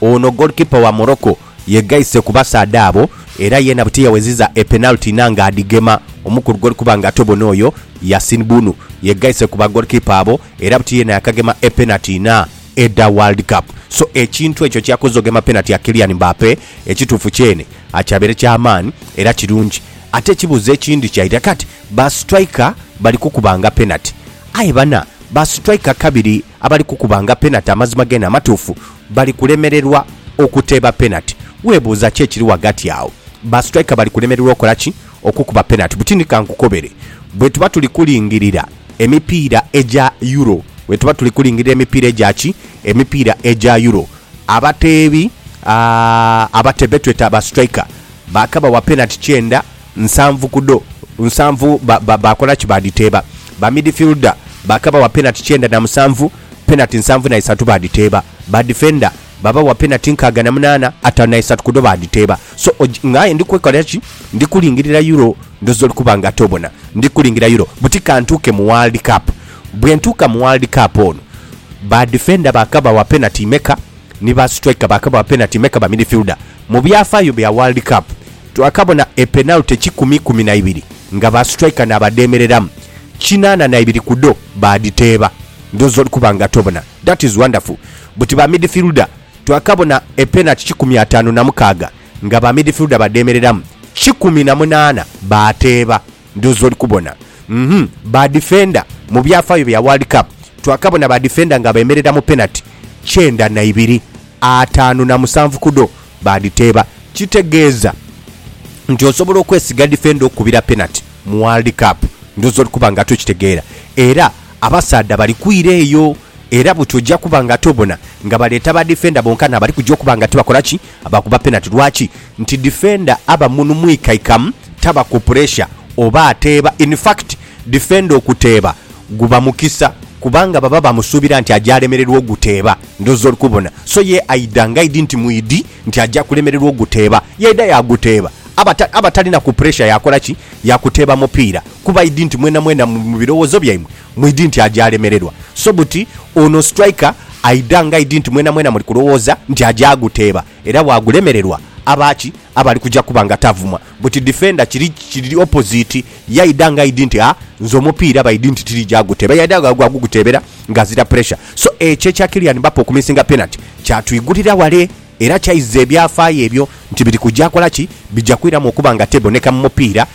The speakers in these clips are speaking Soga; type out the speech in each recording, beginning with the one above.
Ono goalkeeper wa Morocco yegaise ku basaadha abo era yeena butiyaweziza e penalty na nga adhigema. Omukulu goalkuber nga ate obona oyo Yasin Bunu yegaise ku ba goalkeeper abo era buti yeena yakagema e penalty na edha world cup so ekintu ekyo kyakoze ogema penalty ya Kylian Mbappe ekituufu kyeene akyabeere kyamaani era kirungi ate ekibuuzo ekindi kyaidha kati ba striker bali kukubanga penalty aye bana ba striker kabiri Abali kukubanga penati amazima geene amatuufu bali kulemererwa okuteeba penati. Weebuuza ki ekiri ghagati agho? Ba sitraika bali kulemererwa okola ki? Okukuba penati. Buti ni ka nkukobere. Bwe tuba tuli kulingirira emipiira egya Euro, bwe tuba tuli kulingirira emipiira egya ki? Emipiira egya Euro, abateebi, aa, abateebi be tweta ba sitraika, baakabawa penati kyenda. Nsanvu ku dho nsanvu baakola ki? Baadhiteeba. Ba midifilda baakabawa penati kyenda na musanvu, penati nsanvu na isatu baadhiteeba. Ba difenda baabawa penati nkaaga na munaana, ataanu na isatu ku dho baadhiteeba. So nga aye ndi kwekolera ki? Ndi kulingirira Euro. Ndhooza oli kuba nga ate obona ndi kulingirira Euro. Buti ka ntuuke mu World Cup. Bwe ntuuka mu World Cup ono, ba difenda baakabawa penati imeka? Ni ba situraika baakabawa penati imeka? Ba midifilda Mu byafaayo bya World Cup, twakabona e penalty kikumi ikumi na ibiri nga ba striker n'abadheemereramu, kinaana na ibiri ku dho baadhiteeba. Ndhooza oli kuba nga tobona. That is wonderful. Buti ba midfielder, twakabona e penalty kikumi ataanu na mukaaga nga ba midfielder badheemereramu, kikumi na munaana baateeba. Ndhoozi oli kubona. Uhmm ba defender mu byafaayo bya World Cup twakabona ba defender nga beemerera mu penati kyenda na ibiri, ataanu na musanvu ku dho baadhiteeba. Kitegeeza nti osobola okwesiga defender okukubira penati mu World Cup? Ndhoozi oli kuba nga tokitegeera. Era abasaadha bali kwira eyo era buti ojja kuba nga tobona nga baleeta ba defender bonkana abali kugya okuba nga tibakola ki? Abakuba penati lwaki? Nti difenda aba munu mwikaikamu, taba ku puresha oba ateeba. In fact, difenda okuteeba guba mukisa kubanga baba bamusuubira nti aja alemererwa oguteeba. Ndhooza oli kubona. So ye aidha ng'aidhi nti mwidhi nti aja kulemererwa oguteeba, yaidha yaaguteeba. Aba aba tali na ku puresha yaakola ki? Yaakuteeba mupiira kuba aidhi nti mwenamwena mu birowoozo byaimwe, Mwidhi nti aja alemererwa so buti ono striker aidha nga idi nti mwena mwena muli kulowooza nti aja aguteeba era bwagulemererwa aba ki aba ali kuja kuba nga tavumwa buti defender kiri kiri opposite ye aidha nga idi nti aa nze omupiira baidhi nti tirija aguteeba yaidha gha gwa guguteebera nga azira pressure so ekyo ekya Kylian Mbappe okumisinga penalty kyatwigulira wale era kyaiza ebyafaayo ebyo nti biri kuja kola ki bija kwiramu okuba nga teboneka mu mupiira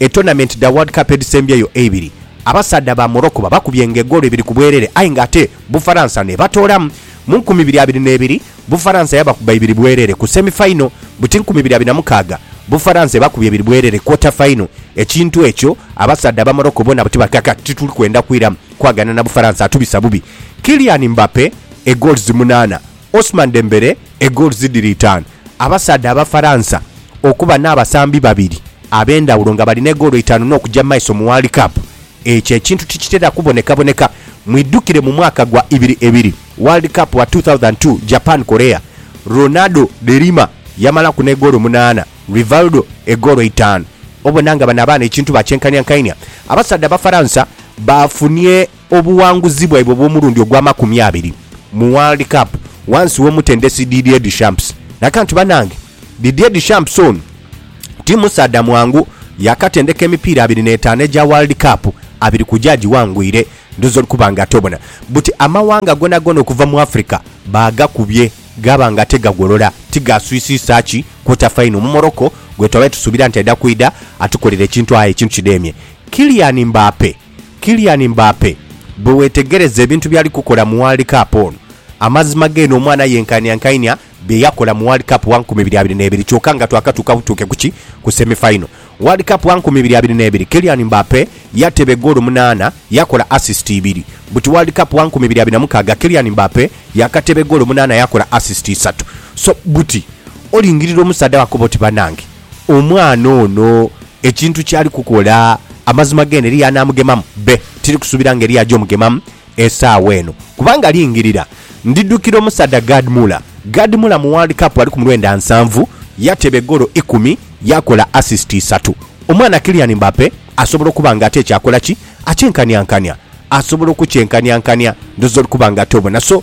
E tournament dha World Cup edhisembyeyo eibiri, abasaadha ba Morocco babakubye nga egoolo ibiri ku bwerere aye nga ate Bufaransa n'ebatoolamu. Mu nkumi ibiri abiri n'ebiri, Bufaransa yabakuba ibiri bwerere ku semi final, buti nkumi ibiri abiri na mukaaga, Bufaransa ebakubye ebiri bwerere quarter final. Ekintu ekyo abasaadha aba Morocco bona buti bati kati tituli kwenda kwiramu kwagana na Bufaransa, atubisa bubi. Kylian Mbappe egoals munaana. Ousmane Dembele e goals dhiri itaanu. Abasaadha Abafaransa okuba n'abasambi babiri ab'endhawulo nga balina egoolo itaanu n'okuja mu maiso mu World Cup, ekyo ekintu tikitera kubonekaboneka. Mwidhukire mu mwaka gwa ibiri ebiri, World Cup wa two thousand and two, Japan, Korea, Ronaldo de Lima yamalaku n'egoolo munaana, Rivaldo e goolo itaanu. Obona nga bano abaana ekintu bakyenkainhiankainhia. Abasaadha Abafaransa baafunie Obuwanguzi bwaibwe obw'omulundi ogw'amakumi abiri mu World Cup wansi w'omutendesi Didier Deschamps. Naga nti banange Didier Deschamps ono ti musaadha mwangu, yaakatendeka emipiira abiri n'etaano egya World Cup, abiri ku gyo agiwangwire. Ndhoozi oli kuba nga tobona buti amawanga goonagoona okuva mu Africa baagakubye gaaba nga ate gagolola ti gaaswisiisa ki quarter final mu Morocco gwetwabadde tusuubira nti aidha kwidha atukolera ekintu aye ekintu kidheemye. Kylian Mbappe. Kylian Mbappe bwe weetegereza ebintu by'ali kukola mu World Cup ono, amazima geene omwana ayenkaaniankainia bye yakola mu World Cup wa nkumi ibiri abiri n'ebiri kyoka nga twakatuuka butuuke ku ki? Ku semi final. World Cup wa nkumi ibiri abiri n'ebiri, Kylian Mbappe yateeba egoolo munaana, yakola assist ibiri. Buti World Cup wa nkumi ibiri abiri na mukaaga, Kylian Mbappe yaakateeba egoolo munaana yakola assist isatu. So buti olingirira omusaadha wakoba oti banange. Omwana ono ekintu kyali kukola, amazima gene eriyo anaamugemamu? Be, tiri kusuubira ng'eriyo aja omugemamu esaawa eno. Kubanga lingirira, ndidhukira omusaadha Gerd Muller. Gerd Muller mu World Cup ali ku mu lwenda nsanvu, yateba egoolo ikumi, yaakola assist isatu. Omwana Kylian Mbappe asobola okuba ng'ate ekyo akola ki? Akyenkanyankanya. Asobola okukyenkanyankanya. Ndhooza oli kuba ng'ate obona. So,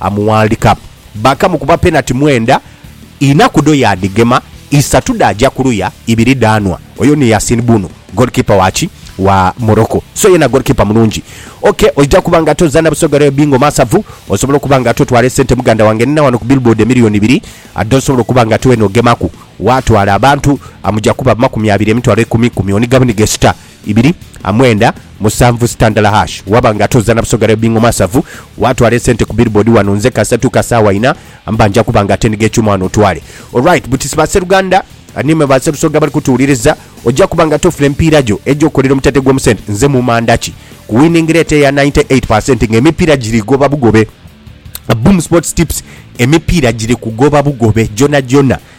Amuwandika bakamu kuba penati mwenda ina kudho yadhigema isatu dhaja kuluya ibiri dhanwa oyo ni Yasin Bunu goalkeeper waki wa Morocco so yena goalkeeper mulungi ok oja kuba nga ate ozana Busoga Royal Bingo Masavu osobola okuba nga ate otwala esente muganda wange nina wano ku billboard emillion ibiri dho osobola okuba nga ate wena ogemaku watwala abantu amuja kuba amakumi abiri emitwalo ikumi kumi onigamu ni gesita ibiri a mwenda musanvu sitandala hash waba nga ate ozana busoga lya bingo masavu watwala esente ku billboard wano nze kasatu kasawa ina mba nja kuba nga atendiga ekyuma wano otwale alright butisi ba seruganda nimwe ba serusoga abali kutuwuliriza oja kuba nga ate ofuna emipiira gyo egyo kolera omutate gwo musente nze mumanda ki ku winning rate eya 98 percent nga emipiira giri goba bugobe Boom Sports Tips emipiira giri kugoba bugobe gyona gyona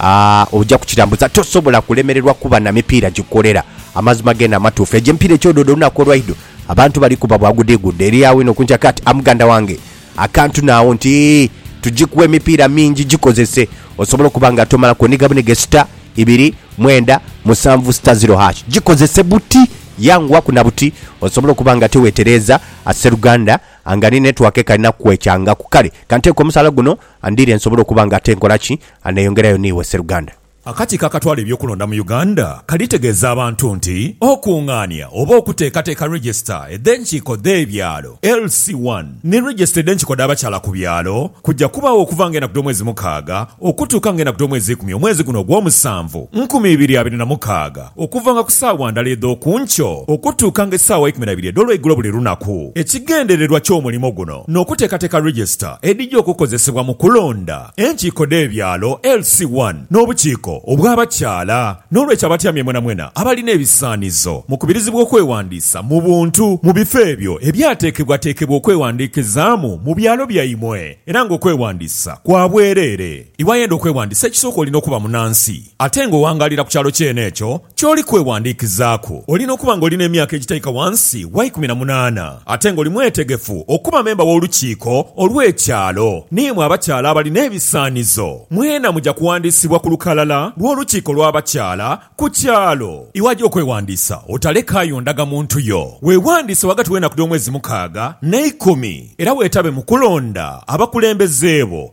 Aah oja kukitambuza tosobola kulemererwa kuba na mipiira gikukolera. Amazima geene amatuufu. Egyo emipiira eky'odoodo olunaku olwaidho abantu bali kuba bwa gudiigudde eri agho inho ku nkya kati. A muganda wange akantu naagho nti tugikuwa emipiira mingi gikozese osobole okuba nga tomala kwoniga buniga esita ibiri mwenda musanvu sita ziro hash. Gikozese buti yanguwaku na buti osobole okuba nga tewetereeza a sseruganda nga ni network ekalina kukwecangaku. Kale kanteeke omusaala guno Andire nsobole okuba nga ate nkola ki? Aneyongerayo ni iwe sseruganda? Akakiiko akatwala eby'okulonda mu Uganda kalitegeeza abantu nti okungaania oba okuteekateeka Regisita edh'enkiiko dh'ebyalo, LC one, ni Regisita edh'enkiiko dh'abakyala ku byalo kujja kubaagho okuva nga enaku dh'omwezi mukaaga okutuuka nga enaku dh'omwezi ikumi omwezi guno ogw'omusanvu nkumi ibiri abiri na mukaaga. Okuvanga ku saawa ndala edh'oku nkyo okutuukanga esaawa eikumi na ibiri edh'olweigulo buli lunaku. Ekigendererwa ky'omulimo guno n'okuteekateeka register edhija okukozesebwa mu kulonda enkiiko dh'ebyalo, LC one, n'obukiiko obw'abakyala. N'olwekyo abatyamye mwenamwena abalina ebisaanizo mukubirizibwa okwewandiisa mu buntu mu bifo ebyo ebyateekebwateekebwa okwewandiikizaamu mu byalo byaimwe era ng'okwewandiisa kwa bwereere. Iwayenda okwewandiisa ekisooka olina okuba munansi. Ate nga owangaalira ku kyalo kyene ekyo ky'oli kwewandiikizaaku, olina okuba nga oli n'emyaka egitaika wansi wa ikumi na munaana, ate nga oli mwetegefu okuba memba w'Olukiiko olw'Ekyalo. Ni imwe abakyala abali n'ebisaanizo, mwena muja kuwandiisibwa ku lukalala lw'Olukiiko lw'Abakyala ku kyalo. Iwaja okwewandiisa, otalekaayo ndagamuntu yo. Weewandiise ghagati w'enaku dh'omwezi mukaaga n'eikumi, era weetabe mu kulonda abakulembeze bo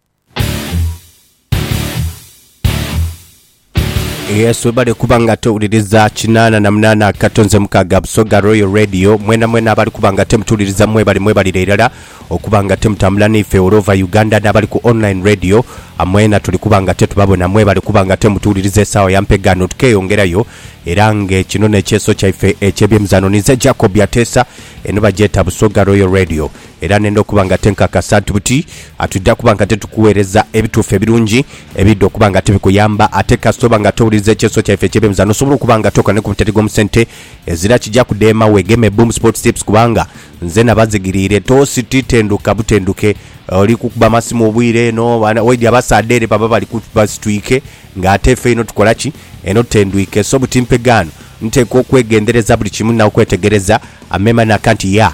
Yes, webale kuba nga tewuliriza kinana na munana akato nze mukaga Busoga Royal Radio mwena mwena abali kuba nga temutuwuliriza mwebale mwebalire irala okuba nga temutambula naife all over Uganda n'abali ku online radio amwena tuli kuba nga tetubabona mwebale kuba nga temutuwuliriza esaawa ya mpegano tukeyongerayo era nge kino n'ekyeso kyaife eky'ebyemizano ninze Jacob Ateesa eno bagyeta Busoga Royal Radio Era nenda okuba nga tenkakasa nti buti atwidha kuba nga tetukuweereza ebituufu ebirungi ebiidha okuba nga tibikuyamba. Ate kasita oba nga towuliriza ekyeso kyaife ekyebeemza n'osobola okuba nga tokola ni ku mutendhe gw'omu sente ezira kija kudheema weegeme Boom Sports Tips kubanga nze nabazigiriire. Tosititenduka butenduke oli kukuba masimu obwire eno waidhi abasaadha ere baba bali ku basitwike nga ate ffe eno tukola ki? Eno tutendwike. So buti mpegaano nteekwa okwegendereza buli kimu n'okwetegereza. Amema n'akanti, Yeah.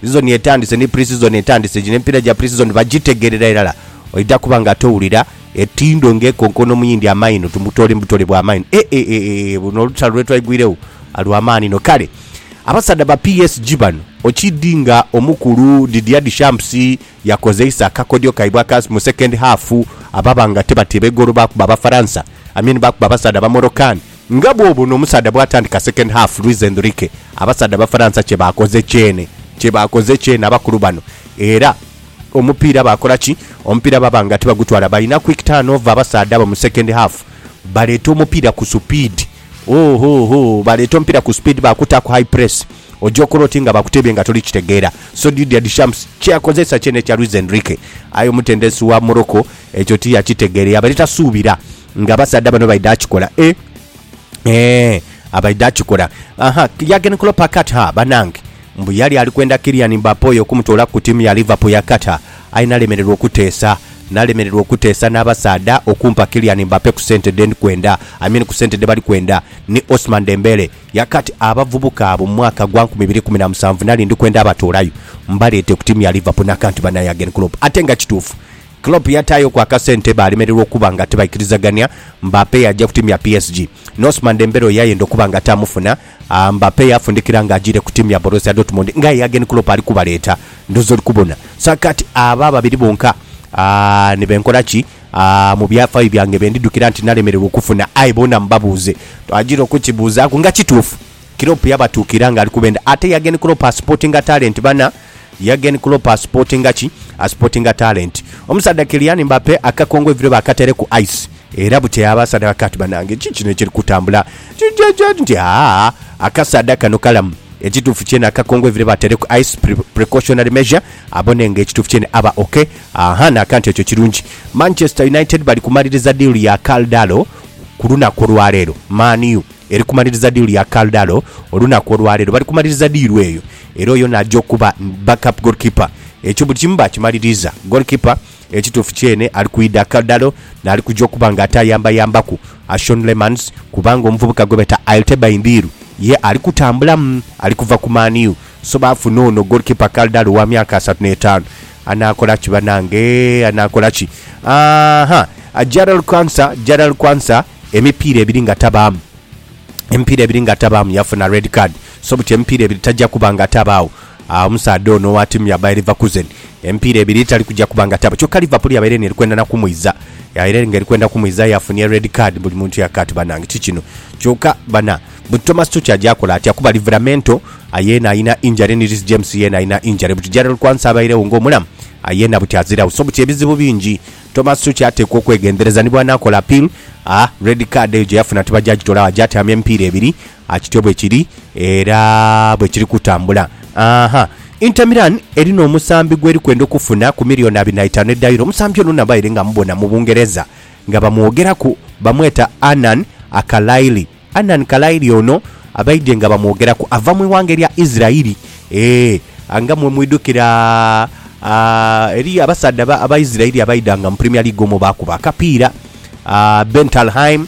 Sizoni etandise ni pre-season etandise gino emipiira gya pre-season bagitegerera irala oidha kuba nga towulira etindo nga ekonkoona omuyindi amaino tumutoole mubutole bwa maino eeeeeee buno olutalo lwetwaigwiregho lwa maani inho kale abasaadha ba PSG bano okidi nga omukulu Didier Deschamps yakozeisa akakodyo kaibwe aka mu second half ababa nga tibateeba igoolo baakuba Abafaransa, I mean baakuba abasaadha ba Moroccan. Nga bw'obona omusaadha bw'atandika second half, Luis Enrique, abasaadha Abafaransa kye baakoze kyene, kye baakoze kyene abakulu bano era omupiira baakola ki? Omupiira baba nga tibagutwala. Balina quick turnover abasaadha abo mu second half, baleeta omupiira ku supiidi. Hoo hoo hoo baleeta omupira ku speed bakuta ku high press oja okola oti nga bakutebye nga toli kitegeera so Didier Deschamps kyeyakozesa kyene ekya Luis Enrique aye omutendesi wa Morocco ekyo tiyakitegeere yabaire tasuubira nga abasaadha bano baidha kikola eeh eeh abaidha kikola ahaa Jurgen Klopp akatha banange mbu yali alikwenda Kylian Mbappe oyo okumutoola ku tiimu ya Liverpool yakatha Aye nalemererwa okuteesa. Nalemererwa okuteesa n'abasaadha okumpa Kylian Mbappe ku sente dhendi kwenda, I mean ku sente dhebali kwenda, ni Ousmane Dembele. Yakati abavubuka abo mu mwaka gwa nkumi ibiri kumi na musanvu nali ndi kwenda abatoolayo mbaleete ku tiimu ya Liverpool nakanti bana Jurgen Klopp. Ate nga kituufu Klopp yataayoku akasente baalemererwa okuba nga tibaikirizagania. Mbappe yaja ku tiimu ya PSG. Ni Ousmane Dembele oyo yayenda okuba nga tamufuna. Mbappe yafundikira nga ajiire ku tiimu ya Borussia Dortmund nga Jurgen Klopp ali kubaleeta. Ndhoozi oli kubona. So kati abo ababiri bonka ni be nkola ki? Mu byafaayo byange be ndidhukira nti nalemererwa okufuna? Aye boona mubabuuze. Twajiire okukibuuzaaku nga kituufu. Klopp yabatuukira nga ali kubenda. Ate Jurgen Klopp asupotinga talenti bana. Jurgen Klopp asipotinga ki? Asipotinga talenti. Omusaadha Kylian Mbappe akakongo eiviro bakataire ku ice era bukya abasaadha bakagha ti banange kiki kino ekiri kutambula nti haa akasaadha kano kalamu. Ekituufu kyene akakongo eiviro bataire ku ice precautionary measure abone nga ekituufu kyene aba ok haa n'akantu ekyo kirungi. Manchester United bali kumaliriza diiru ya Karl Darlow ku lunaku olwaleero. Man U. Eri kumaliriza diiru ya Karl Darlow olunaku olwaleero bali kumaliriza diiru eyo era oyo naja okuba backup goalkeeper ekyo buli kimu bakimaliriza. Goalkeeper ekituufu kyene ali kwidha Karl Darlow naali kuja okuba nga ate ayambayambaku Ashon Lehmanns kubanga omuvubuka gwebeeta Ailtebay Ndiiru ye ali kutambulamu ali kuva ku Man U so baafuna ono goalkeeper Karl Darlow owa myaka asatu n'etaanu. Anaakola ki banange anaakola ki? Aahaa Jarrell Quansah Jarrell Quansah. Emipiira ebiri nga tabaamu. Emipiira ebiri nga tabaamu yafuna red card so buti emipiira ebiri taja kuba nga atabaawo omusaadha ono owa tiimu ya Bayer Leverkusen. Emipiira ebiri tali kuja kuba nga atabaawo kyoka Liverpool yabaire eno eri kwenda na kumwiza. Yabaire nga eri kwenda kumwiza aye afunye red card buli muntu yaka ati banange ki kino. Kyoka bana buti Thomas Tuchel aja akola atya kuba Livramento yeena alina injury ni Reece James yeena alina injury buti Jarell Quansah abairegho nga omulamu aye yena buti aziragho so buti ebizibu bingi. Thomas Succi ateekwa okwegendereza ni bw'anaakola appeal. A red card eyo gye yafuna tiba gyagitola agho agyatyaamya emipiira ebiri. A Kityo bwe kiri era bwe kiri kutambula. Ahaa. Inter Milan erina omusambi gw'eri kwenda okufuna ku miliyooni abiri na itaanu edha Euro. Omusambi ono nabaire nga mubona mu Bungereza nga bamwogeraku, bamweta Anan Akalaili. Anani Kalairi ono abaidye nga bamwogeraku ava mu ighanga erya Isirairi. Ee, nga mwe mwidhukira, eriyo abasaadha Abaisirairi abaidhanga mu Premier League omwo baakuba akapiira. Ben Talheim,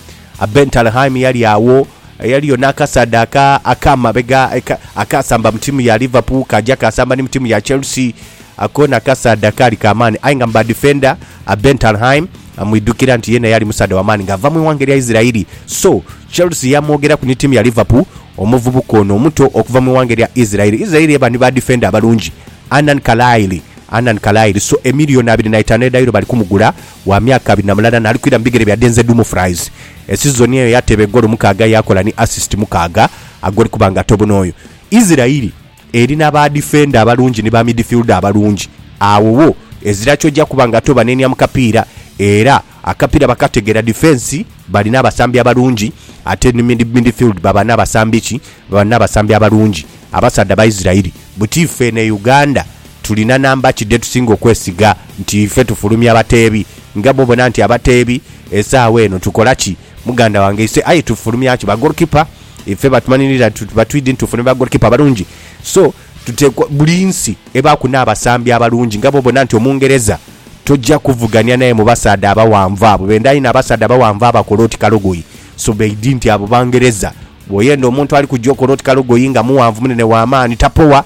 Ben Talheim yali agho. Eriyo n'akasaadha aka, ak'amabega, akaasamba mu tiimu ya Liverpool kaaja kaasamba ni mu tiimu ya Chelsea. Ako nakasaadha kaali ka maani aye nga mu badifenda, Bentalhaim amwidhukira nti yeena yali musaadha wa maani ng'ava mu ighanga erya Isiraeli. So, Chelsea yaamwogeraku ni tiimu ya Liverpool omuvubuka ono omuto okuva mu ighanga erya Isiraeli. Isiraeli eba ni badifenda abalungi, Annan Kalaili, Annan Kalaili. So, emiliyoni abiri na itaanu edha Euro bali kumugula, wa myaka abiri na mulala naali kwira mu bigere bya Denzel Dumfries. Esizoni eyo yateeba egoolo mukaaga yaakola ni asisiti mukaaga, ag'oli kuba nga atabona oyo. Isiraeli. Eri na ba difenda abalungi ni ba midifilda abalungi, agho wo ezira kyoja kuba nga tobanenia mu kapiira era akapiira bakategera. Difensi bali n'abasambi abalungi ate ni midifildi baba n'abasambi ki? Baba n'abasambi abalungi. Abasaadha ba Isirairi buti ife eno e Uganda tulina namba ki dhetusinga okwesiga nti ife tufulumya bateebi? Nga bwobona nti abateebi esaawa eno tukola ki? muganda wange ise aye tufulumya ki ba goal keeper ife batumanilira tuti batwidi nti tufuna ba goal keeper abalungi so tutekwa buli nsi ebaku nabasambi abalungi nga bwobona nti omungereza toja kuvugania naye mubasaadha abawanvu abo benda inho abasaadha abawanvu abakola oti kalogoyi so baidi nti abo bangereza bwoyenda omuntu alikuja okola oti kalogoyi nga muwanvu munene wamaani tapowa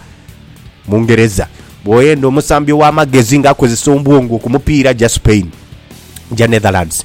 mungereza bwoyenda omusambi owamagezi nga akozesa ombwongo kumupiira ja spain ja netherlands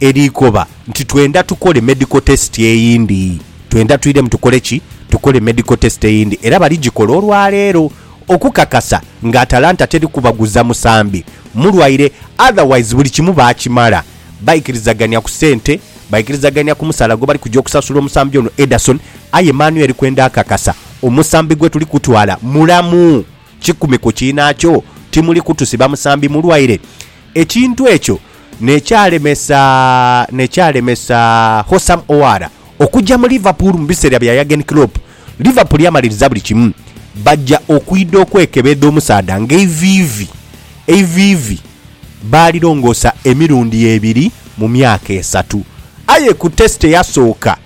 Erikoba nti twendha tukole medical test eyindi. Twendha twiremu tukole ki? Tukole medical test eyindi era baligikola olwaleero okukakasa nga Atalanta teri kubaguza musambi mulwaire otherwise buli kimu baakimala. Baikirizagania ku sente, baikirizagania ku musaala gwebali kugya okusasula omusambi ono Ederson aye Manuel kwendha kakasa omusambi gwetuli kutwala mulamu. Kikumi ku kiinaakyo, timuli kutusiba musambi mulwaire. Ekintu ekyo n'ekyalemesa n'ekyalemesa Hossam Ouara okugya mu Liverpool mu biseera bya Jurgen Klopp. Liverpool yamaliriza buli kimu, baja okwidha okwekebedha omusaadha ng'eiviivi eiviivi baalirongoosa emirundi ebiri mu myaka esatu. Aye ku Test eyasooka,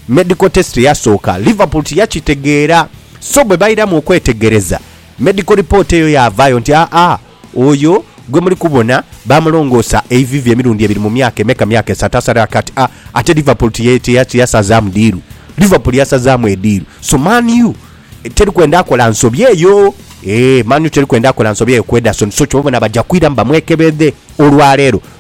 Medical test eyasooka, Liverpool tiyakitegeera, so bwe bairamu okwetegereza, medical report eyo yaavaayo nti aa oyo gwe muli kubona baamulongoosa eivivi emirundi ebiri mu myaka emeka, myaka esatu asalira kati. A Ate Liverpool tiyasazaamu diiru. Liverpool yasazaamu ediiru. So Man U teri kwenda akola nsobi eyo. Eeh, Man U teri kwenda akola nsobi eyo ku Ederson. So kyova obona baja kwiramu bamwekebedhe olwaleero.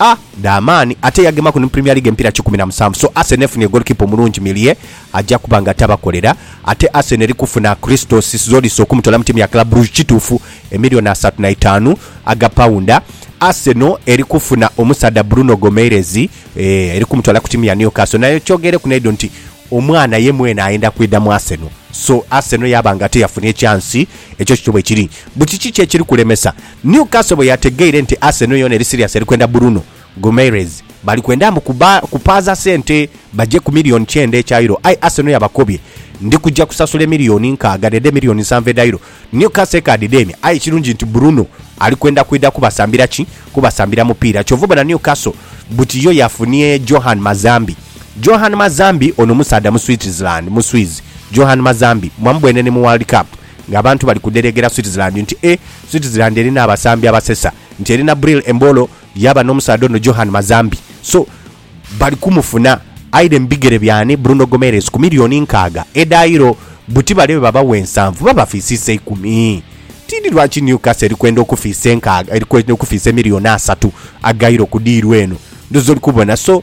A dha maani ate yagemaku ni mu Premier League emipiira kikumi na musanvu so Arsenal efunye ggoolikipa omulungi Meunier aja kuba nga tabakolera ate Arsenal eri kufuna Christos Zolis okumutoola mu ttiimu ya Club Brugge kituufu emillioni asatu na itaanu aga pawunda Arsenal eri kufuna omusaadha Bruno Gomeirez eeh eri kumutoola ku ttiimu ya Newcastle naye kyogeireku n'eidho nti omwana ye mwene ayenda kwidha mu Arsenal so Arsenal yaaba nga ate yafuna ekyansi ekyo kityo bwekiri mbu kiki ki ekiri kulemesa Newcastle bwe yategeire nti Arsenal yoona eri siriasi eri kwenda Bruno Guimares, bali kwenda mbu kupaaza sente baje ku milioni kyenda ekya Euro aye Arsenal yabakobye, Ndi kuja kusasula emilioni nkaaga dh'edho emilioni nsanvu edha Euro. Newcastle ekaadidheemya aye ekirungi nti Bruno ali kwenda kwidha kubasambira ki? Kubasambira mupiira. Kyova obona Newcastle buti yo yafunie Johan Mazambi. Johan Mazambi ono musaadha Muswitzerland, Muswiz, Johan Mazambi mwamubwene ni mu World Cup. Nga abantu bali kudhereegera Switzerland nti e Switzerland erina abasambi abasesa, nti erina Bril Embolo yaaba n'omusaadha ono Johan Mazambi so bali kumufuna aire mu bigere by'ani Bruno Gomeres ku milioni nkaaga edhairo buti bale bwe babawa ensanvu babafiisa isa ikumi. Tiidhi lwaki Newcastle eri kwenda okufiisa enkaaga eri kwenda okufiisa emilioni asatu agairo ku diiru eno. Ndhoozi oli kubona so.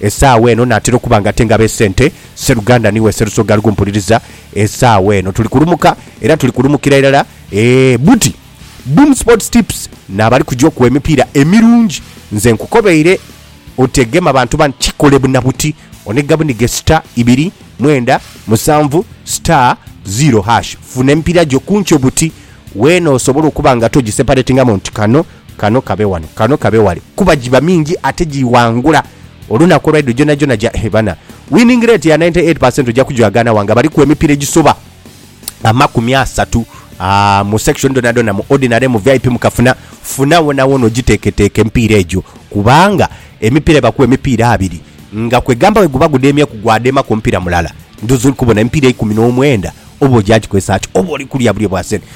Esaawa eno naatera okuba nga ate ngaba esente, Sseruganda ni we Sserusoga ali kumpuliriza esaawa eno. Tuli kulumuka era tuli kulumukira irala eeh buti. Boom Sports Tips n'abali kuja okugha emipiira emirungi nze nkukobeire otegeme abantu bano kikole buna buti onega bunige star ibiri mwenda musanvu star zero hash funa emipiira gyo kunkyo buti wena osobola okuba nga togiseparatingamu nti kano Kano kabe wano, kano kabe wale kuba giba mingi ate giwangula olunaku olwaidho gyonhagyonha gya hee bana. Winning rate ya ninety eight percent ojja kugyagana wa nga baliku emipira egisoba amakumi asatu aah mu section dhonadhona mu ordinary, mu vip, mu kafuna funa wonawona ogiteketeke emipiira egyo kubanga emipira ebaku emipiira abiri nga kwegamba weguba gudemye ku gwadema ku mupira mulala ndhowoza oli kubona emipira eikumi nomwenda oba ogya gikozesa ki oba oli kulya bulye bwa sente.